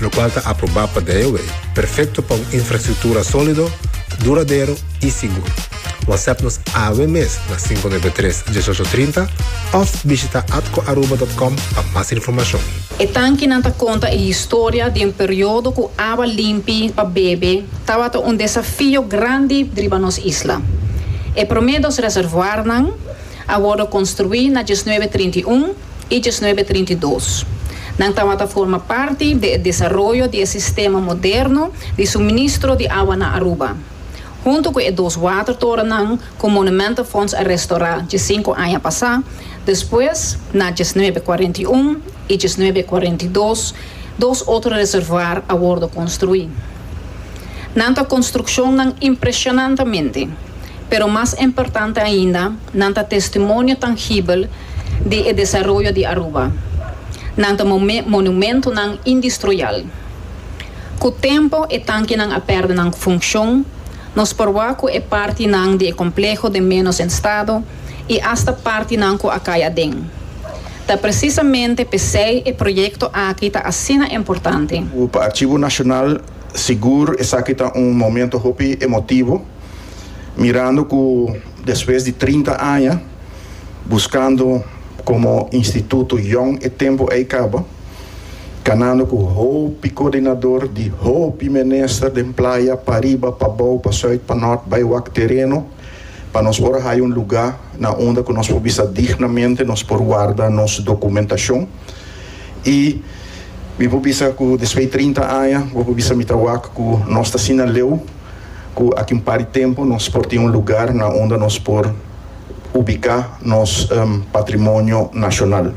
lokual ta aprobá pa DIOA, perfekto pa un infrastruktura sólido, duradero i sigur. Whatsapp nos awe mes na sinku nuebe tres, dieshocho trinta òf bishita atcoaruba dòt com pa mas informashon. E tankinan ta konta e historia di un periodo ku awa limpi pa bebe tabata un desafio grandi riba nos isla. E promé dos reservoarnan a wòrdu konstruí na diesnuebe trinta i un i diesnuebe trinta i dos. Nan tabata forma parti di e desaroyo di e sistema moderno di suministro di awa na Aruba, huntu ku e dos watertorennan ku Monumentenfonds a restorá dje sinku aña pasá, despues na diesnuebe kuarenta i un i diesnuebe kuarenta i dos dos otro reservuar a wordo konstruí. Nan ta construccionnan impresionantemente, pero mas importante ainda nan ta testimonio tangibel di e desaroyo di Aruba. Nan ta monumentonan indestruial. Cu tempo e tankinan a perde nan funcion, nos por wak cu e partinan di e compleho de menos en stado y hasta partinan cu a cay aden. Ta presisamente p'esei e proyekto aki ta asina importante. Ku pa Archivo Nacional sigur esaki ta un momento hopi emotivo, mirando ku despues di trinta aña buskando komo instituto yòn e tempu ei kaba, kanando ku hopi koordinador di hopi minister den playa, pa riba, pa bou, pa sùit, pa nòrt, bai wak tereno. Pa nos por a haya un lugá na unda ku nos por bisa dignamente, nos por warda nos documentashon. I mi por bisa ku despui trinta aña bo por bisa mi ta wak ku nos ta asina leu, ku aki un par di tempu nos por tin un lugar na unda nos por ubiká nos patrimonio nashonal.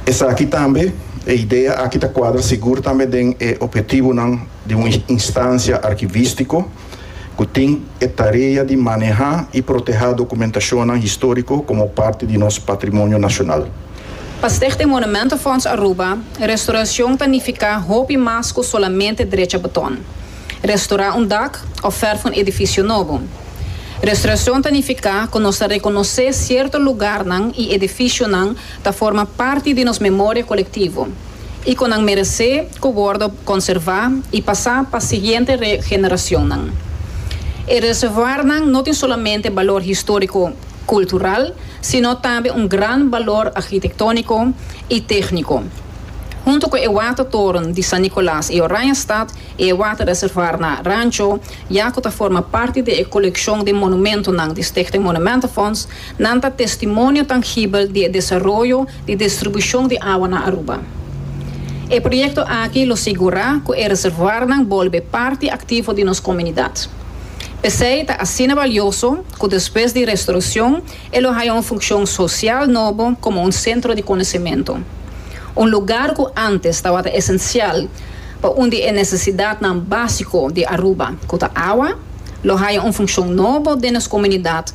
Esaki tambe, e idea aki ta kuadra sigur tambe den e ophetibunan. di un instancia archivistico cu tin e tarea di maneha y proteha documentacionnan historico como parti di nos patrimonio nacional. Pa Stichting Monumentenfonds Aruba, restauracion ta nifica hopi mas cu solamente drecha beton, restaura un dak of verf un edificio nobo. Restauracion ta nifica cu nos ta reconoce cierto lugarnan y edificionan ta forma parti di nos memoria colectivo. i ku nan meresé ku wordo konservá i pasá pa siguiente generacionnan. E reservoarnan no tin solamente balor histórico cultural, sino tambe un gran balor arquitectónico i técnico. Hunto ku e watertoren di San Nicolas i Oranjestad i e waterreservoar na Rancho ya ku ta forma parti di e coleccion di monumentonan di Stichting Monumentenfonds, nan ta testimonio tangibel di e desaroyo di distribushon di awa na Aruba. E proyekto aki lo sigurá ku e reservoarnan bolbe parti aktivo di nos komunidat. P'esei ta asina balioso ku despues di restorason e lo haña un funkshon sosial nobo komo un sentro di konosementu. Un lugar ku ántes tabata esensial pa un di e nesesidatnan básiko di Aruba, ku ta awa, lo haña un funkshon nobo den nos komunidat,